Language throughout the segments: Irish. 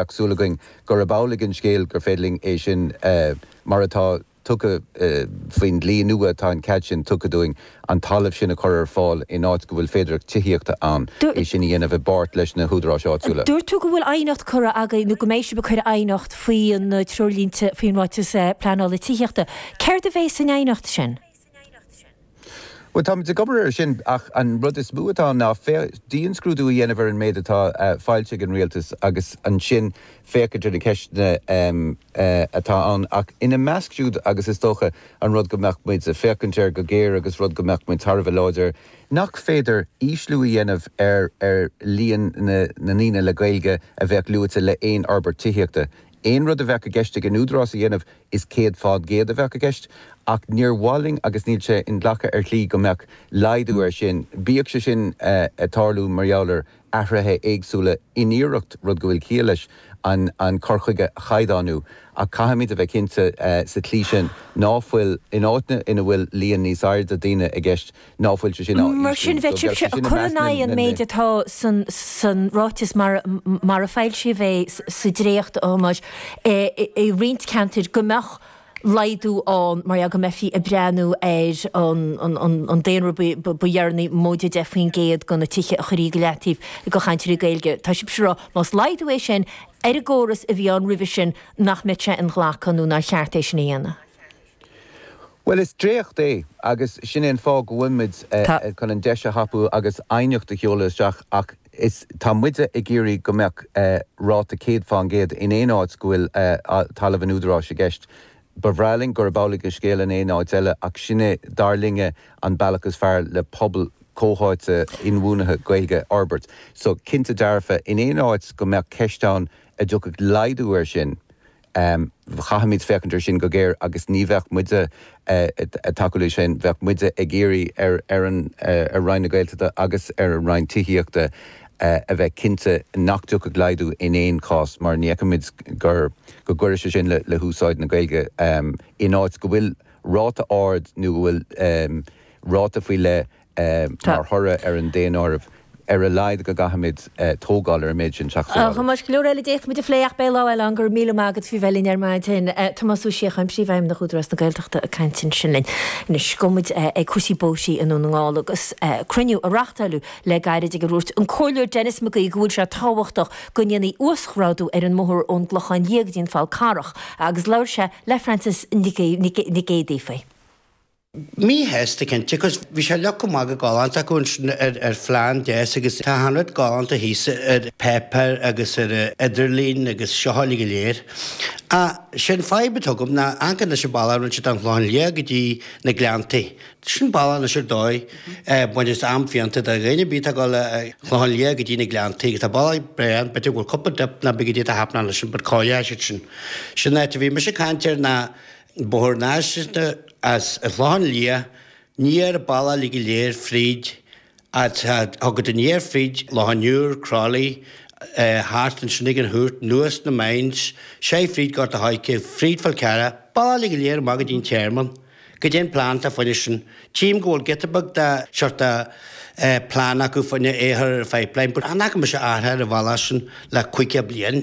Tá súil againn gurb amhlaidh an scéal gur féidir linn é sin, mar atá tugtha faoin dlí nua, tá an cead sin tugtha dúinn, an talamh sin a chur ar fáil in áit go bhfuil féidearthacht tithíochta ann, é sin a dhéanamh i bpáirt leis na húdaráis áitiúla. Dúirt tú go bhfuil aighneacht curtha agaibh, nó go mbeidh sibh ag cur aighneacht faoi na treoirlínte faoin Ráiteas Pleanála Tithíochta. Céard a bheidh san aighneacht sin? Bhuel, táimid ag obair ar sin ach an rud is mó atá ann ná dianscrúdú a dhéanamh ar an méid atá foilsithe ag an rialtas agus ansin féachaint ar na ceisteanna atá ann ach ina measc siúd agus is dócha an rud go mbeadh muid ag féachaint air go géar agus rud go mbeadh muid thar a bheith láidir air nach féidir ísliú a dhéanamh ar líon na ndaoine le Gaeilge a bheadh luaite le haon fhorbairt tithíochta. Aon rud a bheadh i gceist ag an Údarás a dhéanamh, is 100 fán gcéad a bheadh i gceist, ach níor mhaith linn agus níl sé inghlactha ar shlí go mbeadh laghdú air sin, bíodh sé sin ag tarlú mar gheall ar athruithe éagsúla in iarracht, rud go bhfuil ciall leis, an cur chuige a chaighdeánú. Ach caithfimid a bheith cinnte sa tslí sin ná fuil, in áiteanna ina bhfuil líon níos airde daoine i gceist, Ná fuil sé sin á ísliú. Mar sin, bheadh sibhse ag cur in aghaidh an méid atá san, san ráiteas mar, mar a foilsíodh é sa dréacht a Thomáis, i, i roinnt ceantar, go mbeadh laghdú ann mar gheall go mbeifí ag breathnú ar an, an, an, an daonra ba, ba dheireanaí, móide 10% de na tithe a chuirfí go leataobh do chainteoirí Gaeilge. Tá sibhse ag rá, más laghdú é sin ar an gcóras a bhí ann roimhe sin, nach mbeadh sé inghlactha nó nár cheart é sin a dhéanamh. Bhuel, is dréacht é, agus sin é an fáth go bhfuil muid chun an deis a thapú agus aighneacht a sheoladh isteach, ach is, tá muide ag iarraidh go mbeadh ráta 100 fán gcéad in aon áit go bhfuil talamh an údaráis i gceist. Ba bhreá linn gurb amhlaidh an scéal in aon áit eile, ach sin é, dar linne, an bealach is fearr le pobal comhtháite inbhuanaithe Gaeilge a fhorbairt. So, cinnte dearfa, in aon áit go mbeadh ceist ann an dtiocfadh laghdú air sin, Caithfimid féachaint ar sin go géar agus ní bheadh muide ag tacú le sin, bheadh muide ag iarraidh ar Roinn na Gaeltachta agus ar an Roinn Tithíochta a bheith cinnte nach dtiocfadh laghdú in aon chás mar ní fheicimid gur, go gcuirfidh sé sin le húsáid na Gaeilge in áit go bhfuil ráta ard nó go bhfuil ráta faoi leith Mar thoradh ar an daonáireamh, ar a laghad go gcaithfimid tógáil ar an méid sin teach sa áireamh. A Thomáis, go leor eile a d'fhéadfadh muid a phlé ach beidh lá eile ann. Go raibh míle maith agat faoi bheith linn ar maidin. Tomás Ó Síocháin, Príomhfheidhmeannach Údarás na Gaeltachta ag caint ansin linn. Anois, gabhfaidh muid ag cúrsaí bóithrí i nDún na nGall agus cruinniú a reachtáileadh le gairid ag ar dhúirt an Comhairleoir Denis McGee go bhfuil sé tábhachtach go ndéanfaí uasghrádú ar an mbóthar ón gClochán Liath go dtí an Fál Carrach agus labhair sé le Frances Nic Géadaigh faoi. Mí-shásta cinnte, cos bhí sé fhliuch go maith go galánta acu ansin ar ar phlean deas agus tá achan rud galánta thíos ar pháipéar agus ar an idirlíon agus seo uilig go léir. Ach, sé'n fadhb atá agam ná ancaid leis an bhealach a rinne siad ón Chlochán Liath go dtí na Gleanntaí. Sin bealach anois ar dóigh, baint is am-phianta do dhaoine, bíonn atá ag dul ón Chlochán Liath go dtí na Gleanntaí agus tá bealach breá ann, b'fhéidir go bhfuil cúpla dip ná bíonn go dtí tá happening ansin but cá'il leis iad sin. Sin áit a bhí mise ag caint air ná, Bóthar náisiúnta as Clochán Liath aniar bealach uilig go léir fríd tá tú ag dul aniar fríd Loch an Iúir, Croithlí, thart ansin ag an Chúirt, anuas na Mines, seid fríd Gort a' Choirce, fríd Falcarragh, bealach uilig go léir amach go dtí an Tearmann, caidé an plean atá fá choinne sin. Tchím go bhfuil giota beag tá sórt de plean acu faoin a shaothar ar an pipeline, but chan fhaca mise athruithe ar an bhealach sin le caoga bliain?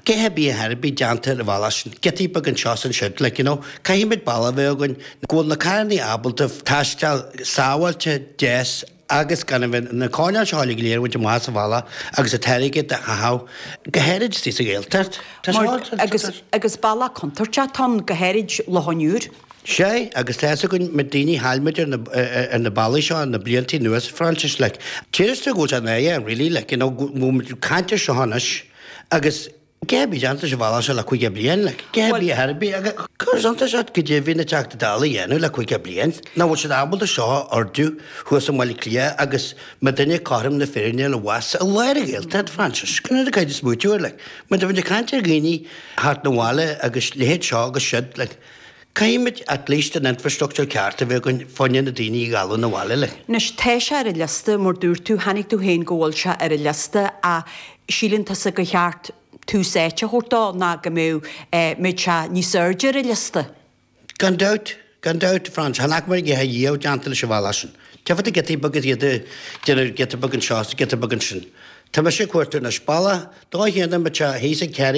Cha raibh obair ar bith déanta ar an bhealach sin, giotaí beag anseo is ansiúd, like you know, caithfimid bealach a bheith againn go bhfuil na carrannaí ábalta taisteal sábháilte, deas agus gan a bheith na coirnéil seo uilig go léir a bhaint amach as an bhealach agus a táirge de chaitheamh, go háirid istigh sa Ghaeltacht. Tá sé. Mar, agus, agus bealach contúirteach atá ann, go háirid Loch an Iúir. Sea, agus tá fhios againn mar daoine a chaill muid ar na bealaí seo thar na blianta anuas, Frances, like, théis tú go bhfuil sé in AN really, like, you know, go bhfuil muid ag caint ar seo anois agus caidé a bhí ag déanamh leis an bhealach seo le caoga bliain, like, caidé a bhí ar bith ag cur suntais ort go deimhin na Teachtaí Dála a dhéanamh le caoga bliain, nach bhfuil siad ábalta seo a ordú thuas i mBaile Átha Cliath agus tabhairt dúinne cothrom na Féinne abhus i lár na Gaeltachta, Frances, sin an infrastruchtúr, like, mar tá muid ag caint ar dhaoine a thabhairt 'na bhaile agus leithéid seo agus siud, like. Caithfimid at least an infrastruchtúr ceart a bheith againn fá choinne na daoine a ghabháil 'na bhaile linn. Anois tá sé ar an liosta, mar dúirt tú, chonaic tú féin go bhfuil sé ar an liosta, ach síleann tusa gur cheart tús áite a thabhairt dó ná go mbeadh eh, mbeadh sé níos airde ar an liosta? Gan dabht, gan dabht, Frances, chan fhaca muid a dhath riamh déanta leis an bhealach sin. Tchífeá giotaí beaga á ndéanamh giota beag anseo is giota beag ansin. Tá mise ag cuartú anois bealach dá dhéanamh, mbeadh sé thíos ag Terry,